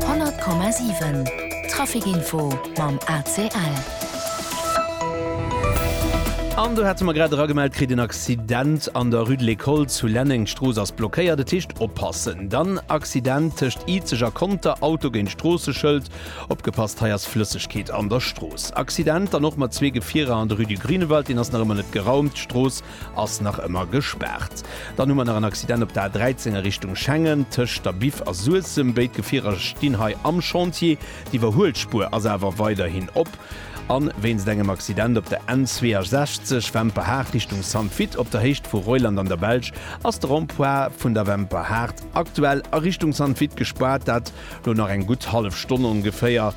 100,7 Trafic-Info mam ACL. An do hate mer grad eragemellt kritt, en Accident an der Rue de l'École zu Lenneng. D'Strooss ass blockéiert, dat heescht oppassen. Dann Accident tëscht Izeg a Conter, Auto géint Stroosseschëld. Opgepasst, hei ass Flëssegkeet an der Strooss. Accident dann och mat zwee Gefierer an der Rue du Grünewald, deen ass nach ëmmer net geraumt. D'Strooss Ass nach ëmmer gespaart. Dann hu mer nach en Accident op der A13 a Richtung Schengen, tëscht der Biff a Suessem. Béid Gefierer stinn hei am Chantier. D'Iwwerhuelspuer ass awer weiderhin op. A wéinst engem Accident op der N62, Wemperhaart Richtung Sainte-Witte, op der Héicht vu Reuland an der Belsch, ass de Rond-point vun der Wemperhaart aktuell a Richtung Sainte-Witte gespaart. Dat Elo nach eng gutt hallef Stonn ongeféier,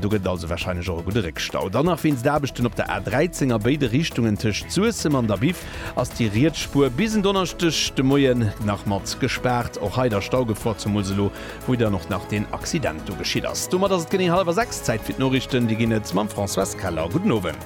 do gëtt et also warscheinlech och e gudde Réckstau. Dann nach wéinst Aarbechten op der A13 a béide Richtungen tëscht Suessem an der Biff ass déi riets Spuer bis en Donneschdeg de Moien nach mat gespaart. Och hei da Staugefor, zemools elo wou dann och nach deen Accident do geschitt ass. Domat ass et genee hallwer 6, Zäit fir d'Norichten. Déi ginn et mam Françoise Keller. Gudden Owend.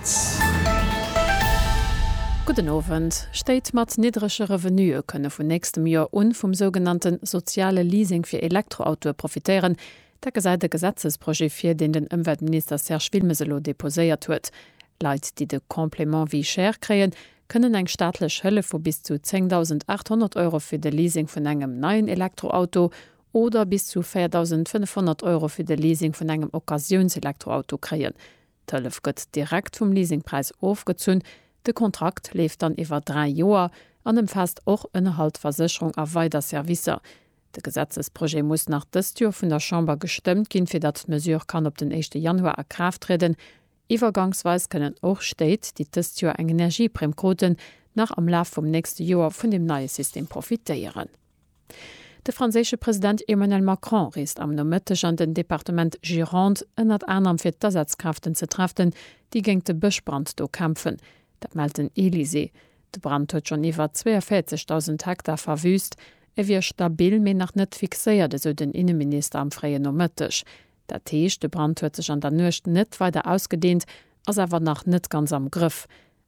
Gudden Owend. Stéit mat niddrege Revenuë kënne vun nächstem Joer un vum sougenannte soziale Leasing fir Elektroautoe profitéieren. Dat gesäit e Gesetzesprojet vir, deen den Ëmweltminister Serge Wilmes elo deposéiert huet. Leit, déi de Complément vie chère kréien, kënnen eng staatlech Hëllef vu bis zu 10.800 Euro fir de Leasing vun engem neien Elektroauto oder bis zu 4.500 Euro fir de Leasing vun engem Occasiounselektroauto kréien. D'Hëllef gëtt direkt vum Leasingpräis ofgezunn. De Kontrakt leeft dann iwwer dräi Joer an ëmfaasst och Ënnerhalt, Versécherung a weider Servicer. De Gesetzesprojet muss nach dëst Joer vun der Chamber gestëmmt ginn, fir datt d'Mesure kann op den éischte Januar a Kraaft trieden. Iwwergangsweis kënnen och Stéit, déi dëst Joer eng Energieprimm kruten, nach am Laf vum nächste Joer vun deem neie System profitéieren. De franséische President Emmanuel Macron reest am Nomëtteg an den Departement Gironde, ënnert anerem fir d'Asazkraften ze treften, déi géingt de Bëschbrand do kämpfen. Dat mellt den Elysée. De Brand huet schonn iwwer 42.000 Hektar verwüüst. E wier stabil, mee nach net fixéiert, esou den Inneminister am fréien Nomëtteg. Dat heescht, de Brand huet sech an der Nuecht net weider ausgedeent, ass awer nach net ganz am Grëff.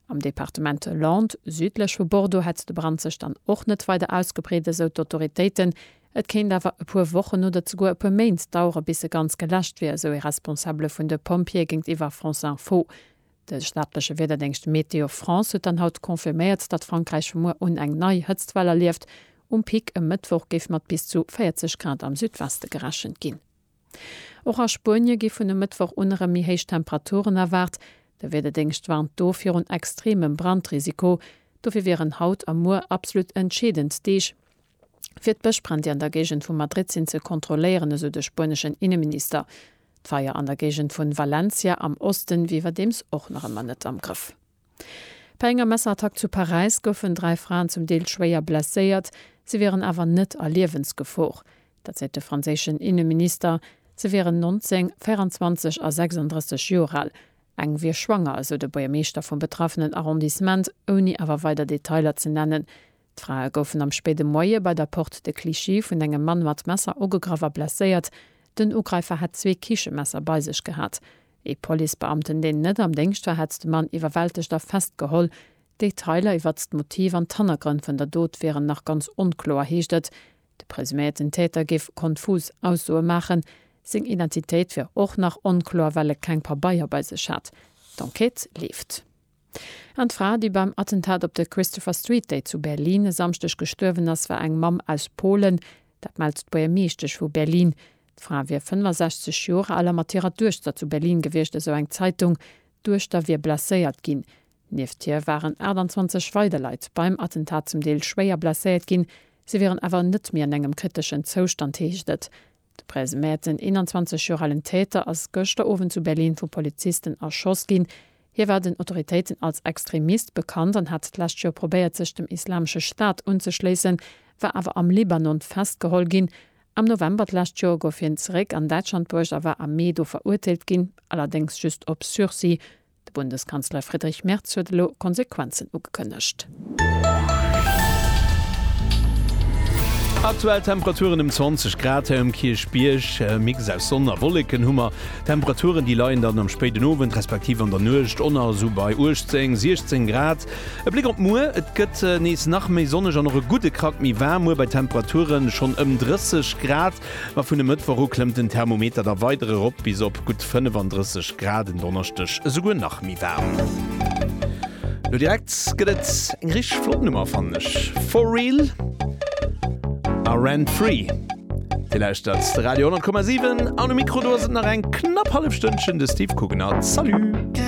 Am Departement Landes, südlech vu Bordeaux, hätt de Brand sech dann och net weider ausgebreet, esou d'Autoritéiten. Et kéint awer e puer Wochen oder zeguer e puer Méint dauere bis e ganz geläscht wier, esou ee Responsabele vun de Pompjeeë géintiwwer France Info. De staatleche Wiederdéngscht Météo France huet dann haut confirméiert, datt Frankräich vu muer un eng nei Hëtztwell erlieft. Um Pic e Mëttwoch géif mat bis zu 40 Grad am Südweste gerechent ginn. Och a Spuenie gi vun e Mëttwoch un erëm méi héich Temperaturen erwaart. De Wiederdéngscht warnt do virun extremem Brandrisiko. Dofir wieren haut a muer absolut entscheedend Deeg, fir d'Bëschbränn, déi an der Géigend vu Madrid sinn, ze kontrolléieren, esou de spueneschen Inneminister. D'Feier an der Géigend vu Valencia am Oste wier iwwerdeems och nach ëmmer net am Grëff. Bei enger Messerattack zu Paräis goufen dräi Fraen zum Deel schwéier blesséiert, se wieren awer net a Liewensgefor. Dat seet de franséischen Inneminister. Se wieren 19, 24 a 36 Joer al. Eng wier schwanger, esou de Buergermeeschter vum betraffenen Arrondissement, ouni awer weider Detailer ze nennen. D'Frae goufen am spéide Moie bei der Porte de Clichy vun engem Mann mat Messer ugegraff a blesséiert. Den Ugreifer hätt zwee Kichemesser bei sech gehat. Ee Policebeamten, deen net am Déngscht war, hätt de Mann iwwerwältegt a festgeholl. D'Detailer iwwert d'Motiv an d'Hannergrënn vun der Dot wieren nach ganz onkloer, heescht et. De presuméierten Täter géif konfus Aussoe maachen. Seng Identitéit wier och nach onkloer, well e keng Pabeier bei sech hat. D'Enquête leeft. An d'Fra, déi beim Attentat op der Christopher Street Day zu Berlin e Samschdeg gestuerwen ass, war eng Mamm aus Polen. Dat mellt d'Buergermeeschtesch vu Berlin. D'Fra wier 65 Joer al a mat hirer Duechter zu Berlin gewiescht, esou eng Zeitung. D'Duechter wier blesséiert ginn. Nieft hir waren 28 weider Leit beim Attentat zum Deel schwéier blesséiert ginn. Si wieren awer net méi an engem kriteschen Zoustand, heescht et. De Pres Mert, den 21 Joer alen Täter, ass gëschter Owend zu Berlin vu Polizisten erschoss ginn. Hie war den Autoritéiten als Extremist bekannt an hat d'lescht Joer probéiert, sech dem Islamesche Staat unzeschléissen, war awer am Libanon festgeholl ginn. Am November d'lescht Joer gouf hien zeréck an Däitschland bruecht a war am Mee do verurteelt ginn, allerdéngs just op Sursis. De Bundeskanzler Friedrich Merz huet elo Konsequenzen ugekënnegt. Aktuell Temperaturen ëm 20 Grad hei um Kierchbierg. E Mix aus Sonn a Wolleken hu mer. D'Temperaturen, déi leien dann am spéiden Owend respektiv an der Nuecht enner esou bei 18, 16 Grad. E Bléck op muer, Et gëtt nees nach méi sonneg an och e gudde Krack méi waarm muer bei Temperaturen schonn ëm 30 Grad. Ma vun e Mëttwoch u klëmmt den Thermometer da weider erop bis op gutt 35 Grad, en Donneschdeg esouguer nach méi waarm. Lo direkt gëtt et eng richteg flott Nummer fannen ech, For Real a Rent Free. Dir lauschtert de Radio 10,7 an um Mikro do ass et nach eng knapp hallef Stënnchen de Steve Coogan a Salut!